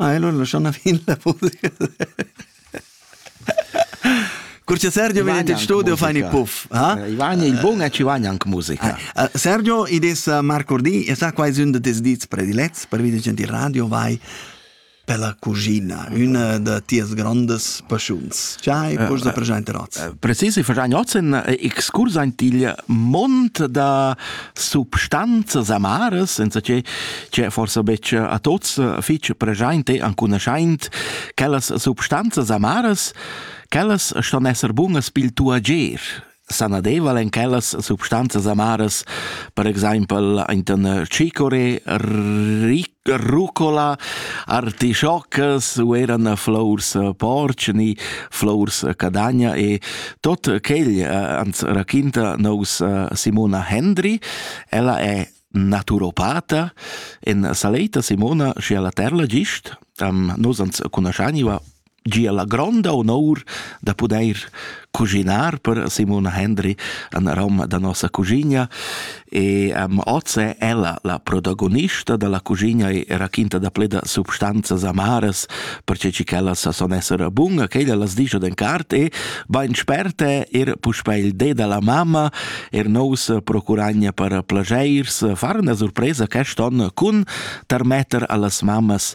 Ah, è l'una schon fin la Curcio Sergio venite in studio fa i puff ha i vagna il buon e ci vagna anche musica Sergio i des Marco Di e sa quasi un de tes dits predilets per vidi genti radio vai per la cuschina, üna da tias grandas paschuns. Ce hai poch da preschainter oz? Precis, ich verstehe oz in excurs ein til mont da substanzas amaras, senza che che forsebec a tots fich preschaint e ancunoschaint quellas substanzas amaras, quellas ston esser bunas pil tuo agier. sanadeval en quellas substanzas amaras, per exempel inten cicore, rucola, artischoccas u eran flors porci ni flors cadagna e tot quel ans raquinta nos Simona Hendry. Ella è naturopata. En saleta Simona, schi ella terla gist, am nos ans cunoscaniva gia la gronda honor da poder cuginar per Simona Hendry an Roma da nossa cuginia e um, oz è ella la protagonista della cuginia e raquinta da pleda substanzas amaras perché ci ch'ella sa son essere bunga che ella las dice den cart e bain sperte er puspè il de della mamma er nous procuragna per plagiers far una sorpresa quest'on cun tarmetter allas mammas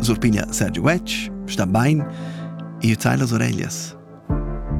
Surpiglia Sergio Vetsch, sta bain, ir tai las oreglias.